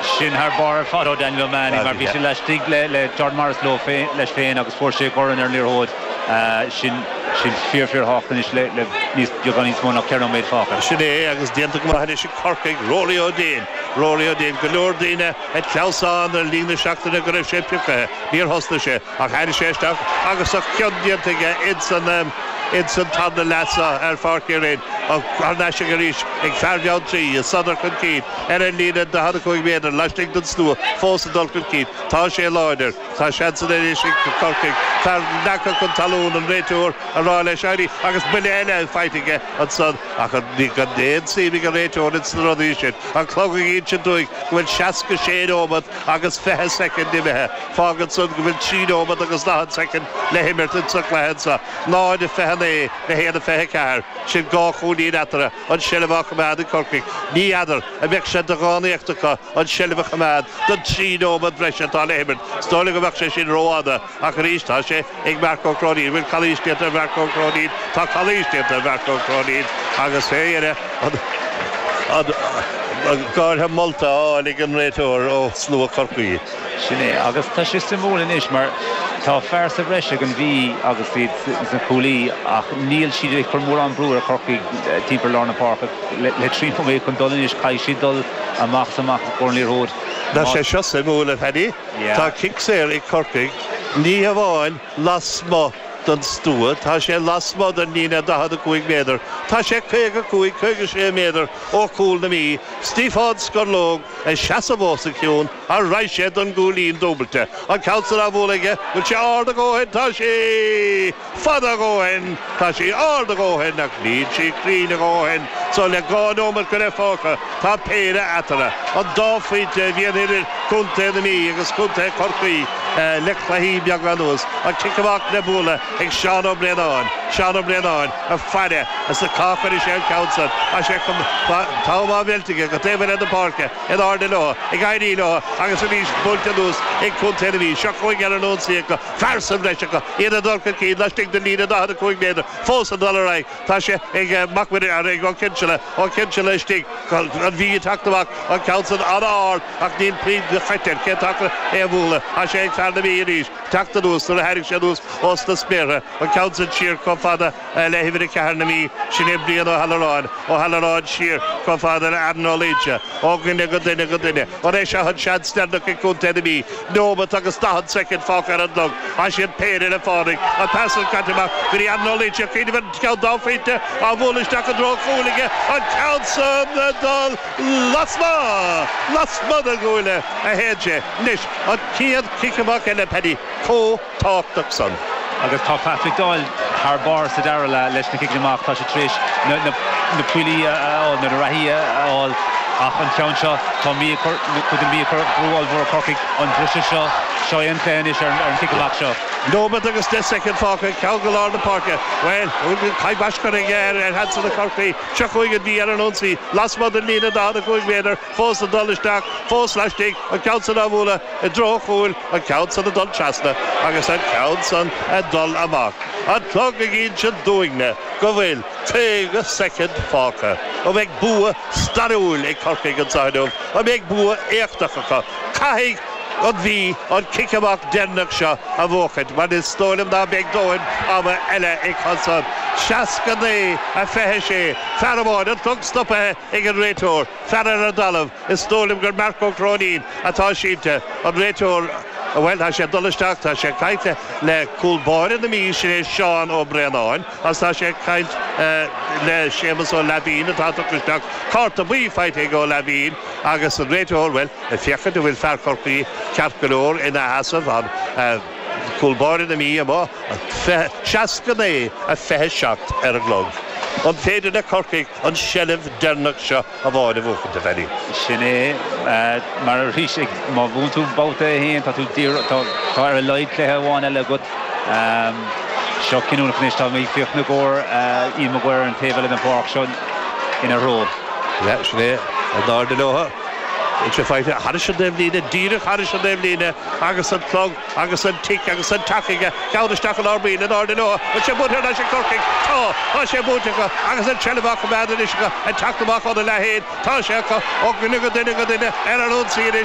sin thar bharr ar fad ó Daniel O'Mahony mar bhí sé laistigh le Jordan Morris leo leis féin agus fuair sé a dhorn ar an liathróid sin sin fíor fíorthábhachtach anois le le níos beagán níos mó ná ceithre nóiméad fágtha. Sin é agus déanta go maith anois ag Corcaigh. Rory Ó Déin. Rory Ó Déin. Go leor daoine ag clamhsán ar líne an tseachtain go raibh sé piocaithe. Níor thosnaigh sé ach tháinig sé isteach agus a chion déanta aige ins an ins an tarna leath seo ar Pháirc Uí Rinn. Thar n-ais aige arís ag fear Bheanntraí. Sodar chun cinn. ar an líne 45 méadar laistigh den stua fós ag dul chun cinn. Tá sé láidir. Tá seansanna anois ag Corcaigh. Tá leagtha chun talún an réiteoir a rá leis éirí agus buille eile faighte aige ansan ach ní raibh aon suim ag an réiteoir ins na rudaí sin. An clog ag insint dúinn go bhfuil 66 neomat agus 20 soicind imithe. Fágann san go bhfuil 3 neomat agus 40 soicind le himirt insa gcluiche anso. 0:29 le 1:24. Sin dhá chúilín eatarthu. an tseilbh á choimeád ag Corcaigh, ní fheadar an mbeadh sé de dhánaíocht acu an tseilbh a choimeád don trí nóiméad breise atá le himirt. Is dóigh liom go mbeadh sé sin rófhada, ach arís, tá sé ag Marc Ó Cróinín. Bhfuil calaois déanta ar Mharc Ó Cróinín? Tá calaois déanta ar Mharc Ó Cróinín agus, fé dheireadh, an gártha molta á fháil ag an réiteoir ó shlua Chorcaí. Sin é. Agus tá sé suimiúil anois mar tá fear sa bhreis ag an Mhí agus iad sna cúlaithe ach níl siad ag cur mórán brú ar Chorcaigh timpeall lár na páirce le trí nóiméad chun dul anois. Caithfidh siad dul amach is amach i gcomhair an liathróid. Tá sé seo suimiúil, a Phaddy. Tá cic saor ag Corcaigh, ní hamháin lasmuigh den stua, tá sé lasmuigh den líne 45 méadar. Tá sé 55, 56 méadar ó chúl na Mí. Stiofán Scorlóg ag seasamh os a chionn. An raghaidh sé don gcúilín dúbailte. An ceann san á bhualadh aige, bhfuil sé ard a dhóthain, tá sé fada a dhóthain, tá sé ard a dhóthain ach níl sé cruinn a dhóthain so le dhá nóimeat go leith fágtha tá péire eatarthu, an dá phointe a bhíonn idir Contae na Mí agus Contae Chorcaí le cluichí beaga anuas. An cic amach le bualadh ag Seán Ó Braonáin, Seán Ó Braonáin ag faire féachaint cá gcuirfidh sé an ceann san is é, tá an t-am á mheilt aige go taobh eile na páirce. in airde leo, ag éirí leo agus arís buailte anuas ag contae na Mí. Seo chugainn Eoghan Ó Frighil fear sa bhreis acu, iad ag dul chun cinn laistigh den líne 45 méadar, fós ag dul ar aghaidh. Tá sé ag Mac Muirí, ag Ó Cinnseala, Ó Cinnseala istigh, an Mhí ag teacht amach, an ceann san an-ard ach níl puinn nirt air, cén t-achar é a bhualadh? Tá sé ag fear na Mí arís teacht anuas nuair a tháinig sé anuas ós na spéartha, an ceann san siar chomh fada le huimhir a ceathair na Mí, sin é Brian Ó hAlluráin, Ó hAlluráin siar chomh fada le Aran Ó Laoidhe, ó dhuine go duine go duine. An é seo an seans deireanach ag Contae na Mí? Neomat agus daichead soicind fágtha ar an gclog agus iad péire le fánaidh, an pas san caite amach go dtí Aran Ó Laoidhe, cuimhneamh ar an gceann dá phointe á bhualadh isteach i dtreo an chúil aige, an ceann san ag dul lasmuigh, lasmuigh na gcuaillí a théann sé. Anois an chéad chic amach eile, Paddy, chomh. tábhachtach san. Agus tá Patrick Doyle thar barr sa dara leath leis na ciceanna amach. Tá siad tar éis na poill a fháil, nó na reathaí a fháil ach an ceann seo, tá an Mhí ag cur, nó Contae na Mí ag cur brú ollmhór ar Chorcaigh an briseadh seo. Seo é an plé anois ar an chic amach seo. Nóimeat agus deich soicind fágtha, ceann go lár na páirce. Bhuel, caith baisc curtha aige ar sheansanna Chorcaí. Seo chugainn an Mhí ar an ionsaí, lasmuigh den líne 45 méadar. fós ag dul isteach, fós laistigh, an ceann san á bhualadh i dtreo an chúil, an ceann san ag dul trasna agus an ceann san ag dul amach. An clog ag inse dúinne go bhfuil 50 soicind fágtha. An mbeidh bua stairiúil ag Corcaigh anseo inniu? An mbeidh bua éachtach acu? Caithfidh an Mhí an cic amach deireanach seo a bhuachaint mar is dóigh liom ná beidh dóthain ama eile acu san. 69, 26. Fear amháin, an clog stopaithe. ag an réiteoir, fear ar an dtalamh, is dóigh liom gur Marc Ó Cróinín atá sínte, an réiteoir, bhuel, tá sé ag dul isteach, tá sé ag caint le le cúl báire na Mí, sin é Seán Ó Braonáin, agus tá sé ag caint le Séamus Ó Laibhín, atá tugtha isteach, cárta buí faighte ag Ó Laibhín, agus an réiteoir, bhuel, ag féachaint an bhfuil fear Chorcaí ceart go leor ina sheasamh ann, cúl báire na Mí amuigh, 69, 27 ar an gclog. An féidir le Corcaigh an seilbh deireanach seo a fháil a bhuachaint, if any. Sin é. Mar arís, má bhuann tú babhta a haon, tá tú díreach, tá, tá ar a laghad cluiche amháin eile agat. Seo cinniúnach anois, tá mé ag féachaint ina gcomhair, Ian Maguire ar an taobh eile den pháirc, seo ina threo. Yeah, sin é. In airde leotha, beidh sé faighte thairis an dtaobhlíne, díreach thairis an dtaobhlíne agus an clog Agus an tic agus an tac aige, ceann isteach i lár baill in airde leo, an bhfuil sé buaite ar ais ag Corcaigh? Tá, tá sé buaite acu, agus an seilbh á coimeád anois acu, ag teacht amach óna leath féin, tá sé acu, ó dhuine go duine go duine, ar an ionsaí anois,